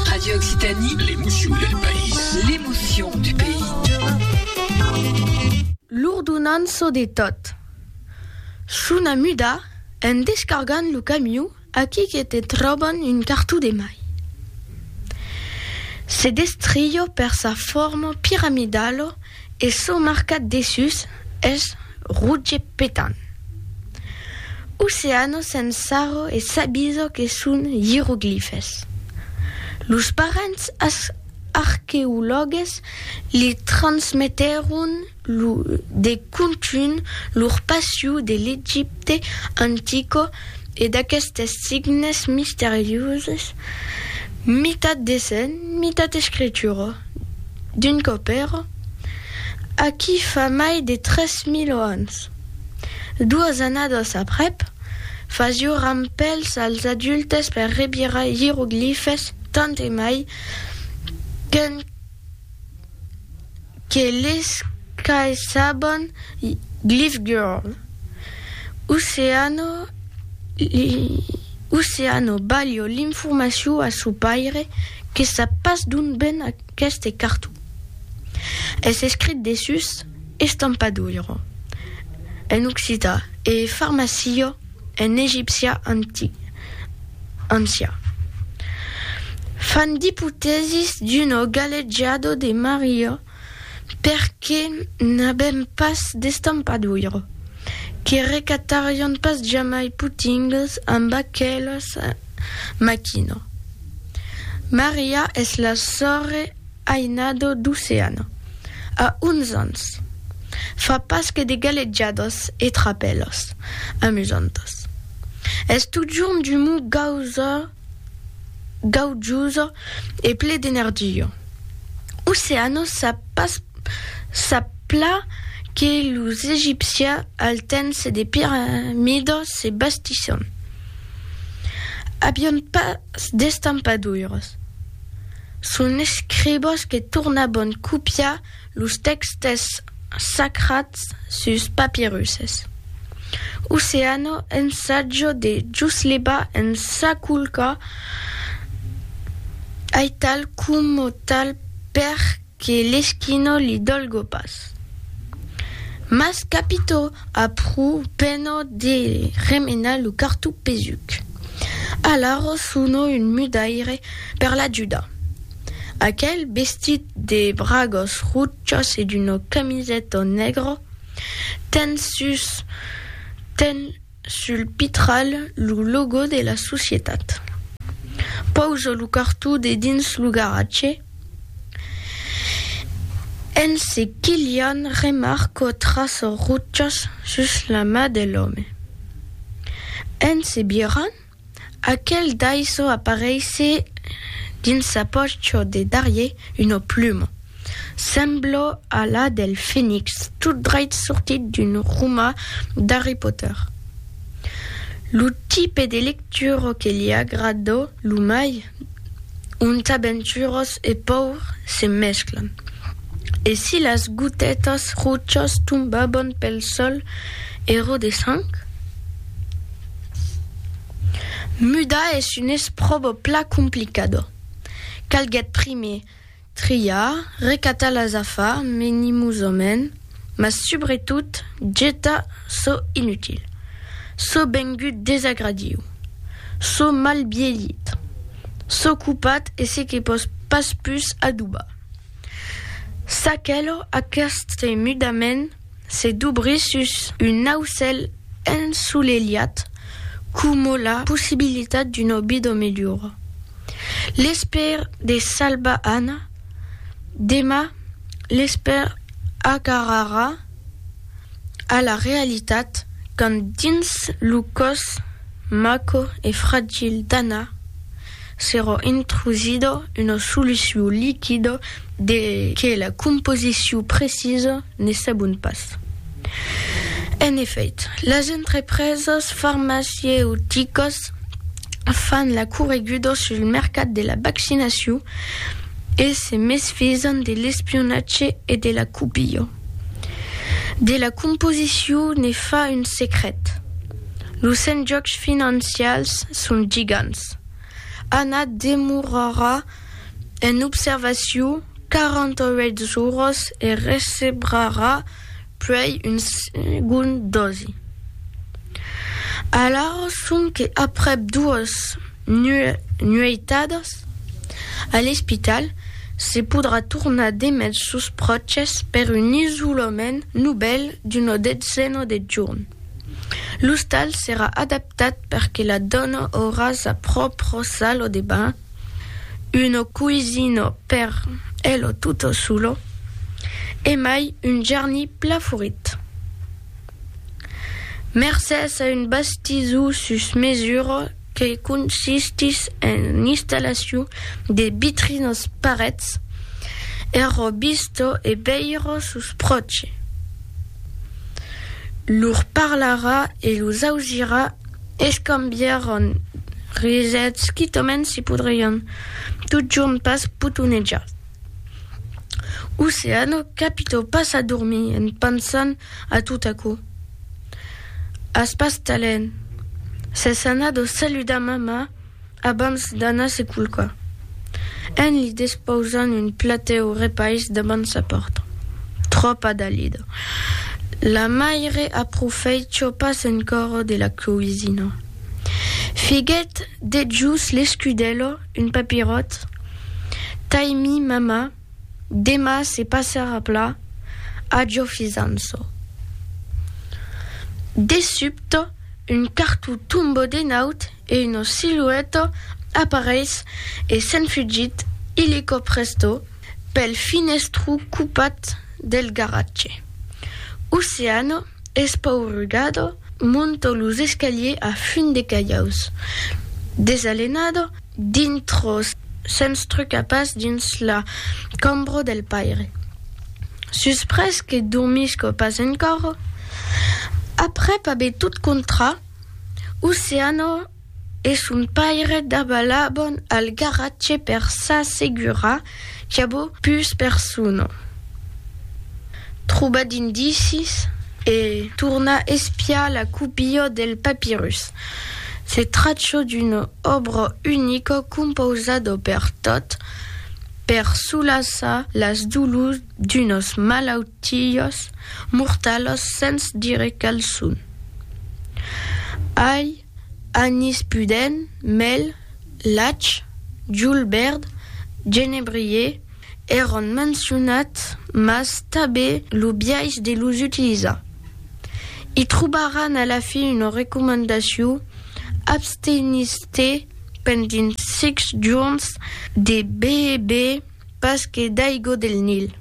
Radio Occitanie, l'emotion del país. L'emotion du pays. L'ordonança de tot. Chuna muda, en descargant lo camion, Aquí que te tròban un cartó de mai. Se destrió per sa forma piramidala e çò marcat dessús es roge petant. Oceana se'n sarra e s'avisa que son ieroglifes. Los parents arqueològues li transmetèron lo de contunh lor passiu de l'Egipte antico e d'aquestes signes misterioses, mitat dessenh, mitat escritura, d'un copèro, aquí fa mai de tres mil ans. Doas annadas aprèp, fasió rampèls als adultes per revirar ieroglifes tant e mai qu'un. Que les qu'ai sabon Glyph Girl Oceano Oceano balho l'informacion a son paire que sap pas d'ont ven aqueste carton Es escrit dessús Estampadoiro en occitan e Farmacio En egipcia antic, ancià. Fan d'ipotèsis d'uno galejado de Maria perque n'avèm pas d'estampadoiro, que recatarion pas jamai potingues amb aquelas maquina. Maria es la sòrre. Ainado d'Oceana, a onze ans, fa pas que de galetjadas e trapèlas amusantas. Es totjorn d'umor gausa, gaujosa e ple d'energia. Oceana sap pas, sap plan que los egipcians al temps de piramida se bastisson avián pas d'estampaduiras. Son escribós que tornabon copiar los tèxtes sacrats sus papirusses. Oceano ensajo de Jusleba en s'aculcar aital coma tal per que l'esquino li dolgo pas. Mas capito! Apr'u pena de remenar lo cartó pesuc, alara sono un mudaire per l'ajudar. Aquel, vestit de bragas rochas e d'una camiseta negra, ten sus ten sul pitral lo logo de la societat. Pausa lo cartó dedins lo garatge. En se quilhant remarco traço ruchas sus la ma de l'òme. En se birant, aquel daiso apareisse dins sa pòcho de darrier una pluma, semblo a la del Fenix tot dreit sortit d'un roma d'Harry Potter. Lo tipe de lectura que li agrada lo mai? ont aventurós e paur se mesclan, e si las gotètas rochas tombaban pel sòl ero de sang. Mudar es un espròbo pla complicada, calguèt primier Triar, recatar las afar menimosament, mas subretot getar çò inutil, çò bengut desagradiu, çò mal bielhit, çò copat e se que pòs pas pus adobar. Çaquelò, aqueste mudament, Se dobrir sus un aucèl ensolelhat coma la possibilitat d'una vida melhora. L'espèr de salvar Anna, demà l'espèr agarrarà a la realitat quand dins lo còs maco e fragil d'Anna, S'èra intrusida una solucion liquida de que la composicion precisa ne sabon pas. En efèit, las entrepresas farmacieuticas fan la correguda sul mercat de la vaccinacion e se mesfisan de l'espionatge e de la copia. De la composicion ne fa un secret. Los enjòcs financials son gigants. Anna demorarà en observacion 48 zoros e recebrarà puèi un segond dosi. Alara sonque aprèp doas nueitadas a l'espital, se podrà tornar demest sos pròches per un isolament novèl d'una detzena de jorn. L'ostal serà adaptat per que la dona aurà sa pròpra sala de banh, una coisina per ela tota sola e mai un jarni pla forit. Mercés a un bastizó sus mesura, que consistís en l'installacion de vitrinas parets er robistò e veire sos pròches. Lor parlarà e los ausirà escambiaràn risets quitament se podrián totjorn pas potonejar. Oceano capitò pas a dormir en pensant a tot aquò. As pas talent. S'es anat o saludar mama abans d'anar se culcar, en li despausant un platèu o repais davant sa pòrta. Tròpa dalida. La maire aprofèitja pas encòra de la coisina. Figuèt dejús l'escudèla, un papiròt, tai-mi mama. Dema se passarà pla, ajo fisanço. De subte, un cartó tombe de naut e una silueta apareis e se'n fugit illico presto pel finestró copat del garatge. Oceano. Espaurugado, monto los escaliers a fum de calhaus. Desalenado, dintro, sens trucar pas dins la cambra del paire. Suspres que dormisco pas encòra, aprèp aver tot contrat, Oceano, e son paire dabalabon al garatge per s'assegurar qu'avó pus persona. Trobar d'indicis e tornar espiar la copia del papirus. Se tracha d'una òbra unica compausada per tot per solaçar las dolors d'unas malautiás mortalas sens dire qual son. Ai Anis pudent, mèl, lach, julbèrd, genebrier, èron mencionats mas tabé lo biais de los utilizar. I trobaràn a la fin una recomandacion, abstenir-se pendent sic jorns de beber pas que d'aigua del Nil.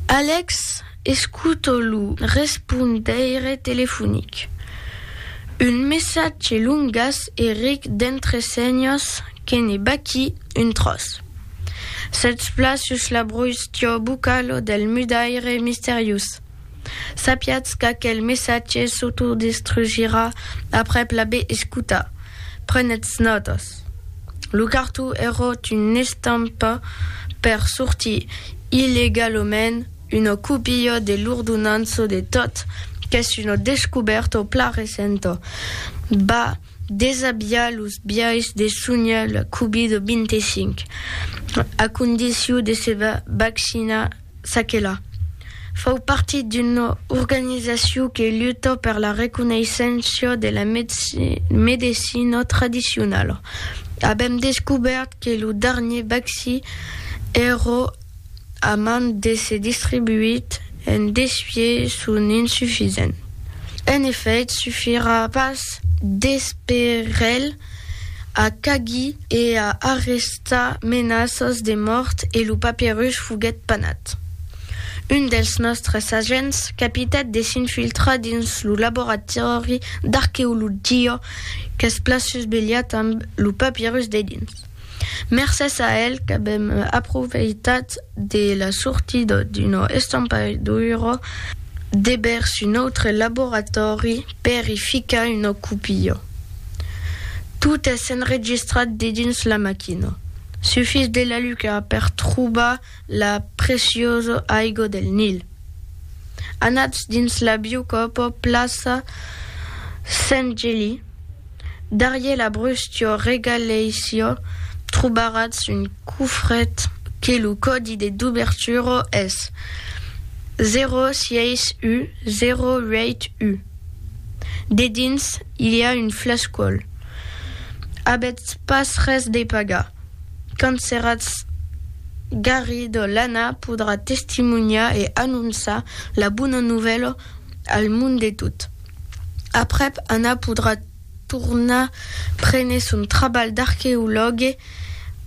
Alex escuta lo respondeire telefonic. Un messatge longas e ric d'entre senhas que ne baquí un tròç. Sètz plan sus la broistia bucala del mudaire misteriós. Sapiatz qu'aquel messatge s'autodestrugirà aprèp l'aver escotat. Prenètz nòtas. Lo cartó eròt una estampa per sortir illegalament una copia de l'ordonança de tot qu'es una descobèrta plan recenta. Va desabiar los biais de sonhar la Covid-25, a condicion de se vaccinar S'aquela fau partit d'una organizacion que luta per la reconeisséncia de la medecina tradicionala, avèm descobèrt que lo darnier vaccí èra a man d'èsser distribuit en desfier son insufisent. En efèit, sufirà pas d'esperelh a Cagui e a arrestar menaças de mòrt e lo papierush foguèt panat. Un dels nòstres agents capitèt de s'infiltrar dins lo laboratòri d'arqueologia qu'es plaçut belhat amb lo papierus dedins. Mercés a el qu'avèm aprofeitat de la sortida d'una estampaidura de vèrs un autre laboratòri per i ficar una copia. Tot es enregistrat dedins la maquina. Sufís de la luca per trobar la preciosa aiga del Nil. Anatz dins la biocòpa plaça Sent Geli. Darrier la bruscio regaleisio trobaratz un cofret que lo còdi de dubertura es 06U08U. Dedins i a un flascòl. Avètz pas res de pagar. Quand seratz Garrido l'Anna podrà testimonhar e anonçar la bona novèla al monde tot. Aprèp, Anna podrà tornar prene son trabalh d'arqueològue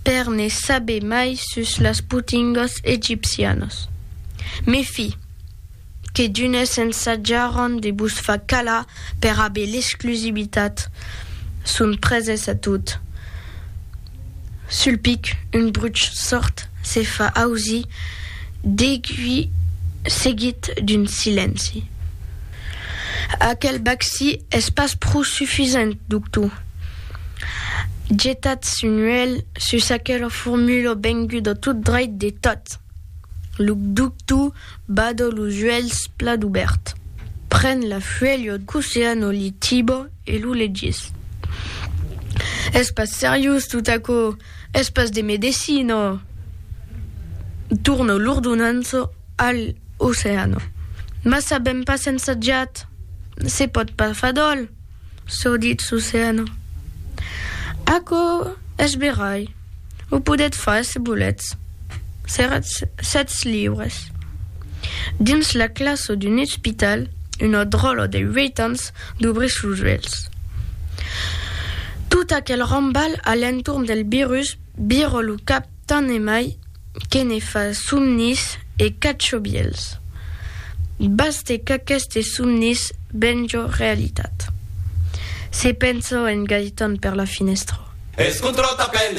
per ne saber mai sus las potingòs egipcianos. Mes fi, que d'unes s'ensatjaràn de vos far calar per aver l'exclusivitat, son preses a tot. Sul pic, un bruch sòrd se fa ausir, degui seguit d'un silenci. Aquel bacci es pas pro sufisent, doctor. Getatz un uèlh sus aquela formula venguda tot dreit de tot. Lo doctor bada los uèlhs plat obèrt, pren la fuèlha d'Oceano Litiba e lo legís. Es pas seriós tot aquò! Es pas de medecina. Torna l'ordonança a l'oceana. Mas sabèm pas ensajat. Se pòt pas far d'òl, çò ditz l'oceana. Aquò es verai. O podètz far se volètz. Seratz sètz liures. Dins la classa d'un ospital, una dròla de uèit ans Dubrís los uèlhs. Tot aquel rambalh a l'entorn del virus vira lo cap tant e mai que ne fa somnis e cachobièls. Baste qu'aquestes somnis venja realitat. Se pensa en Gaëtan per la finèstra. Escontròta pels